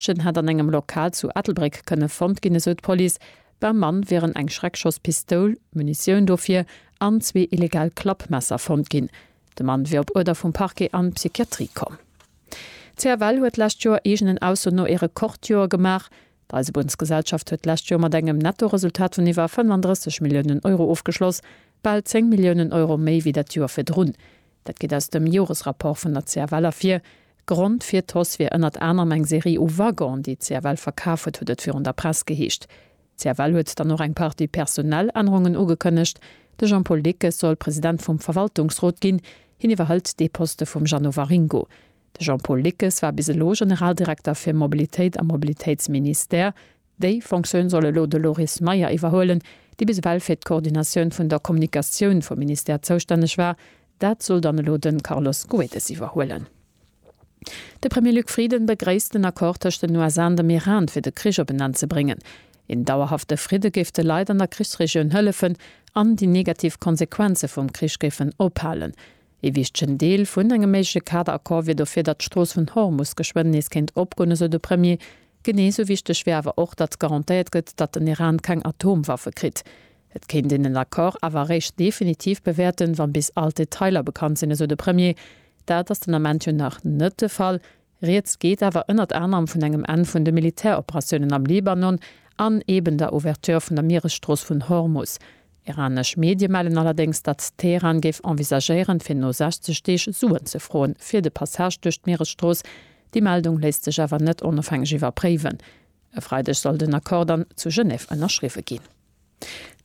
D'Mädchen hätt an engem Lokal zu Ettelbréck kënne fonnt ginn, esou d'Police. Beim Mann wieren eng Schreckschosspistoul, Munitioun dofir an zwee illegal Klappmesser fonnt ginn. De Mann wier op Uerder vum Parquet an d'Psychiatrie komm. D'CFL huet d'lescht Joer eegenen Ausso no e Rekordjoer gemaach. D'Eisebunnsgesellschaft huet d'lescht Joer mat engem Nettoresultat vun iwwer 35 Milliounen Euro ofgeschloss, bal 10 Milliounen Euro méi wéi dat Joer virdrun. Dat geet aus dem Joresrapport vun der CFL ervir. Grond fir d'Hausse wier ënnert anerem eng Serie u Waggonen, déi d'CFL verkaf huet, huet et virun der Press geheescht. D'CFL huet dann och eng Partie Personalännerungen ugekënnegt. De Jean-Paul Dickes soll President vum Verwaltungsrot ginn. Hien iwwerhëlt dee Poste vum Jeannot Waringo. De Jean-Paul Dickes war bis elo Generaldirekter fir Mobilitéit am Mobilitéitsministère. Déi Fonctioun soll elo de Loris Meyer iwwerhuelen, dee bis ewell fir d'Koordinatioun vun der Kommunikatioun vum Ministère zoustänneg war. Dat soll dann elo de Carlos Goedes iwwerhuelen. De Premier Luc Frieden begréisst den Accord tëscht den USA an dem Iran, fir de Krich op en Enn ze bréngen. Een dauerhafte Fridde géif de Leit an der Krichsregioun hëllefen an déi negativ Konsequenze vum Krich géifen ophalen. Ee wichtegen Deel vun engem méigleche Kaderaccord wier dofir, datt d'Strooss vun Hormus geschwënn nees kéint opgoen, esou de Premier. Genee esou wichteg wier awer och, datt garantéiert gëtt, datt den Iran keng Atomwaffe kritt. Et kéint een den Accord awer eréischt definitiv bewäerten, wann bis all d'Detailer bekannt sinn, esou de Premier. Dat ass den Ament jo nach net de Fall. Rieds geet awer ënnert anerem vun engem Enn vun de Militäroperatiounen am Libanon an eben der Ouverture vun der Mieresstrooss vun Hormus. Iranesch Medie mellen allerdéngs, datt Teheran géif envisagéieren, fir no 60 Deeg Suen ze froen, fir de Passage duerch d'Mieresstrooss. Déi Meldung léisst sech awer net onofhängeg iwwerpréiwen. E Freideg soll den Accord dann zu Genève ënnerschriwwe ginn.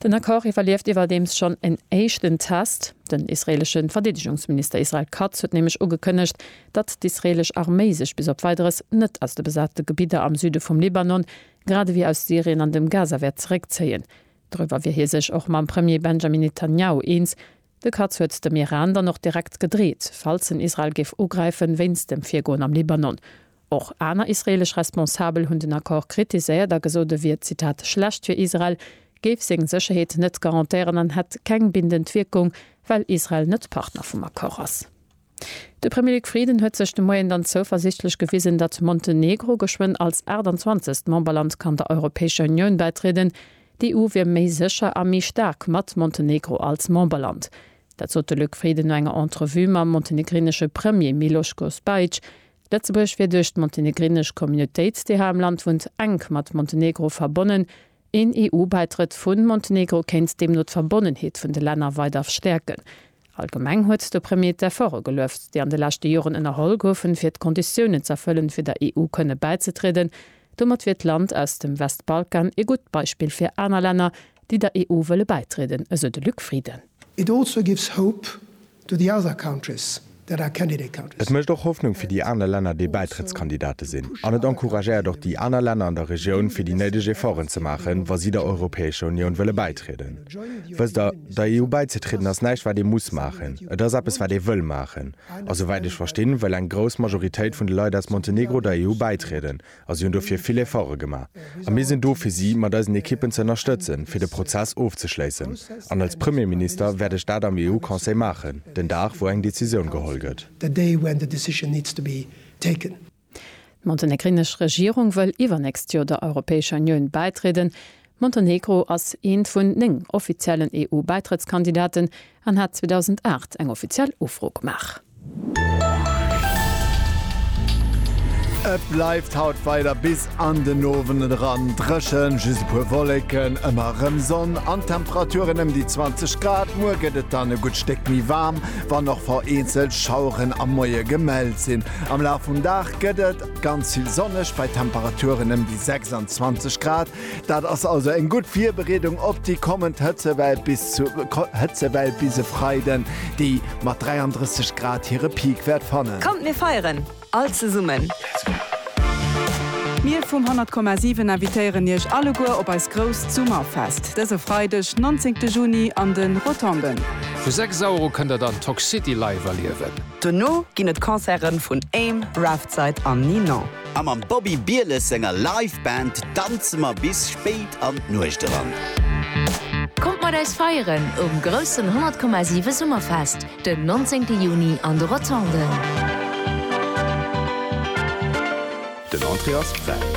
Den Accord iwwerlieft iwwerdeems schonn en éischten Test. Den israeelesche Verdeedegungsminister Israel Katz huet nämlech ugekënnegt, datt d'israeelesch Arméi sech bis op Weideres net aus de besate Gebidder am Süde vum Libanon, grad ewéi aus Syrien an dem Gaza wäert zeréckzéien. Doriwwer wier hie sech och mam Premier Benjamin Netanjahu eens. De Katz huet dem Iran dann och direkt gedreet, falls en Israel géif ugräifen, wéinst dem Virgoen am Libanon. Och aner israeelesch Responsabel hunn den Accord kritiséiert a gesot, e wier, Zitat, schlecht fir Israel, géif seng Sécherheet net garantéieren an hätt keng bindend Wierkung, well Israel net Partner vum Accord ass. De Premier Luc Frieden huet sech de Moien dann zouversiichtlech gewisen, datt Montenegro geschwënn als 28. Memberland kann der Europäescher Unioun bäitrieden. D'EU wier méi sécher a méi staark mat Montenegro als Memberland. Dat sot de Luc Frieden no enger Entrevue mam montenegrinesche Premier Miloško Spajić. Lëtzebuerg wier duerch d'montenegrinesch Communautéit, déi hei am Land wunnt, enk mat Montenegro verbonnen, Een EU-Bäitrëtt vu Montenegro kéint deemno d'Verbonnenheet vun de Länner weider stäerken. Allgemeng huet de Premier d'Efforte gelueft, déi an de leschte Joren ënnerholl goufen, fir d'Konditiounen z'erfëllen, fir der EU kënne bäizetrieden. Domat wier d'Land aus dem Westbalkan ee gutt Beispill fir aner Länner, déi der EU wëlle bäitrieden, esou de Luc Frieden. It also gives hope To the other countries that are candidate countries. Et mécht och Hoffnung fir déi aner Länner, déi Bäitrëttskandidate sinn, an et encouragéiert och déi aner Länner an der Regioun, fir déi néideg Efforten ze maachen, wa si der Europäescher Unioun wëlle bäitrieden. Wësst Der, der EU bäizetrieden ass näischt, wat ee muss maachen, et ass eppes, wat ee wëll maachen. A souwäit ech verstinn, wëll eng grouss Majoritéit vun de Leit aus Montenegro der EU bäitrieden, a si hunn dofir vill Efforte gemaach. A mir sinn do fir si mat eisen Ekippen ze ënnerstëtzen, fir de Prozess ofzeschléissen. An als Premierminister wäert ech dat am EU-Conseil maachen, den Dag wou eng Decisioun geholl gëtt. D'montenegrinesch Regierung wëll iwwernächst Joer der Europäescher Unioun bäitrieden. Montenegro ass eent vun néng offiziellen EU-Bäitrëttskandidaten, an hat 2008 eng offiziell Ufro gemaach. Et bleift haut weider bis an den Owend eran dréchen, just e puer Wolleken, ëmmer erëm Sonn an d'Temperaturen ëm déi 20 Grad. Muer gëtt et dann e gutt Stéck méi waarm, wann och vereenzelt Schaueren am Moie gemellt sinn. Am Laf vum Dag gëtt et ganz vill sonneg, bei Temperaturen ëm déi 26 Grad, Dat ass also eng gutt Virbereedung op déi kommend Hëtzewell bis zu Hëtzewell bis e Freiden, déi mat 33 Grad hire Peak wäert fannen. Kommt mir feieren all zesummen! Mir vum 100,7 invitéieren Iech alleguer op eist grousst Summerfest dëse Freideg 19 Juni an de Rotonden. Vu 6 Auer u kënnt der dann Toxcity live erliewen. Dono ginn et Concerten vun Aim, Raftside an Ninon. A mam Bobby Bieles senger Live Band danze mer bis spéit an d'Nuecht eran. Kommt mat eis feieren um groussen 100,7 Summerfest den 19 Juni an de Rotonden. Den Entrée ass fräi.